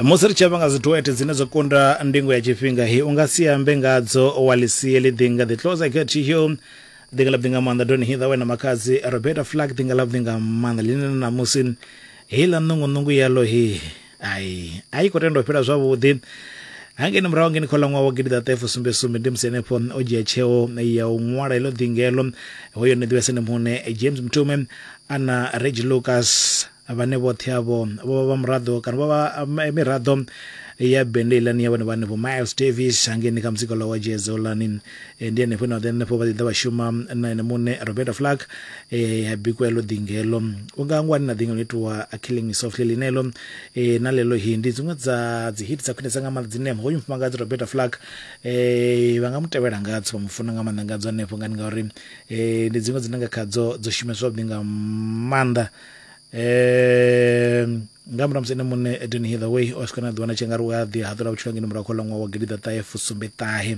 musi ri tshi amba nga dziduete dzine dzo kunda ndingo ya tshifhinga hi u nga si ambe ngadzo wa lisie ḽi ḓi nga ḓi closer get to you ḓi nga ḽa ḓi nga maanḓa doni hitha wena makhadzi roberta flag ḓi nga ḽa ḓi nga maanḓa ḽine na ṋamusi heiḽa ṋungunungu yalo he ai a i khou tenda u fhela zwavhuḓi hangeni murahu ngeni kha ḽaṅwaha wa gidi ḓa ṱahe fusumbe sumbe ndi musi henefho o dzhia tsheo ya u ṅwala heḽo ḓingelo hoyo ni ḓivhese ni muṋe james mtume ana regi lucas vhane vhoṱhe avho vho vha vha muraḓo kana vho vha eh, miraḓo ya bende ilani ya vhone vha hanefho miles davis hangeni kha muzika wa jezo lani eh, ndi henefho ine vha ḓo henefho vha ḓiḓa vha shuma na ene muṋe roberto flack eh, ya bikwa elo ḓingelo u nga ngwani na ḓingelo itiwa a killing me softly linelo na lelo hi ndi dziṅwe dza dzi hit dza khwinesa nga maanḓa dzine hoyu mufumakadzi roberto flack vha nga mu tevhela ngadzo vha mu funa nga maanḓa ngadzo hanefho ngani ngauri ndi dziṅwe dzine nga khadzo dzo shumiswa vhuḓi nga maanḓa um nga murahu musi ene muṋe eden hitherway o swika na ḓuvha na tshengari u a ḓi haṱula vhutshilo ngeno murahu kha ḽa ṅwaha wa gidi ḓaṱahe fusumbe ṱahe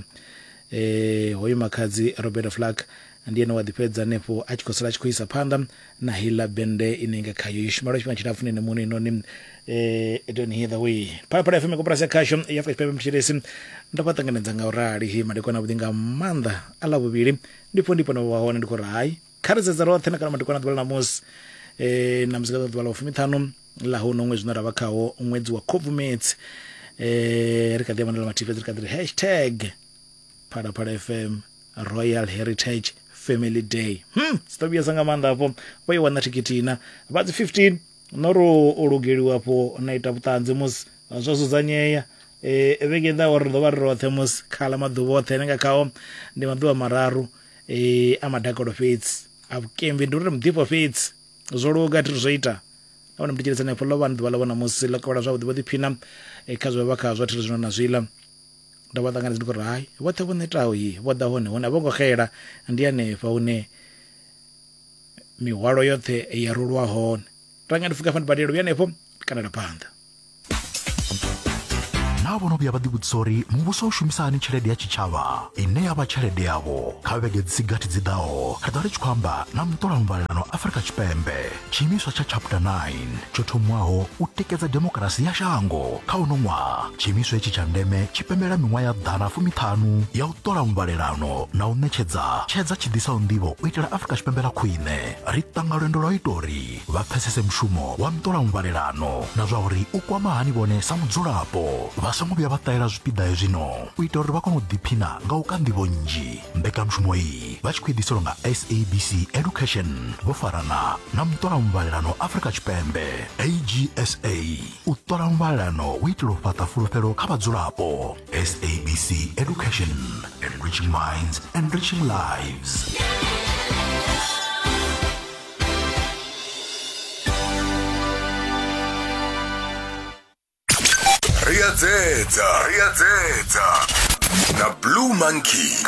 um hoyu makhadzi robert flack ndi ene wa ḓifhedza hanefho a tshi khou sala a tshi khou isa phanḓa na heiḽa bende ine nga khayo yo shumela tshifhinga tshilapfu nene muṋe inoni um eden hitherway phalaphala fm koporasi ya khasho ya afrika tshipembe mthetshelesi ndo vha ṱanganedza nga u rali madekwana vhuḓi nga maanḓa a ḽa vhuvhili ndipfo ndipfo na vha hone ndi khou ri hai kha ri sedze roṱhe na kana madekwana ḓuvha ḽa ṋamusi um na muzika ḓuvha ḽa u fumiṱhanu ḽa ho no ṅwedzi une ra vha khawo ṅwedzi wa khobvumedzi um ri kha ḓi ya vhandela mathihi fhedzi ri kha ḓi ri hashtag phalaphala fm royal heritage family day hmm si ḓo vhuyesa nga maanḓa afho vho i wana thikhithi ina vha dzi 15 no ro o lugeliwa afho na ita vhuṱanzi musi zwo dzudzanyea um vhege i ḓaho ri ḓo vha ri roṱhe musi khala maḓuvha oṱhe ane nga khao ndi maḓuvha mararu e, a madakalo fhedzi a vhukembi ndi uri muḓifho fhedzi zwo luga thi zwo ita nahone mutitshelisa hanefho ḽo vha ni ḓuvha ḽa vhona musi ḽo kavhala zwavhuḓi vho ḓiphina e, kha zwe vha khazwo thi zwino na zwiḽa ndo vha ṱanganedza ndi khou ri hai vhoṱhe vho netaho yi vho ḓa hone hone a vho ngo xela ndi hanefha hune mihwalo yoṱhe ya rulwa hone tanga ndi fuka fa ndi badela vhuya hanefho kana la phanḓa naa vho no vhuya vha ḓivhudzisa uri muvhuso u shumisa hani tshelede ya tshitshavha ine ya vha tshelede yavho kha vhege dzi si gathi dzi ḓaho ri ḓo ri tshi khou amba na muṱola muvhalelano afurika tshipembe tshiimiswa tsha chapter 9 tsho thomiwaho u tikedza demokarasi ya shango kha uno ṅwaha tshiimiswa hetshi tsha ndeme tshi pembela miṅwaha ya ḓana fumiṱhanu ya u ṱola muvhalelano na u ṋetshedza tshedza tshi ḓisaho nḓivho u itela afurika tshipembe ḽa khwine ri ṱanga lwendo lwa u ita uri vha pfesese mushumo wa ntolamuvhalelano na zwa uri u kwama hani vhone sa mudzulapo vha songo vhuya vha ṱahela zwipiḓa hezwino u ita uri vha kone u ḓiphina nga u ka nḓivho nnzhi mbekanyamushumo iyi vha tshi khou ḓiselwa nga sabc education vho farana na muṱolamuvhalelano afrika tshipembe agsa u ṱola muvhalelano u itela u fhaṱa fulufhelo kha vhadzulapo sabc education enriching minds enriching lives Ri a dzedza, ri a dzedza na Blue Monkey.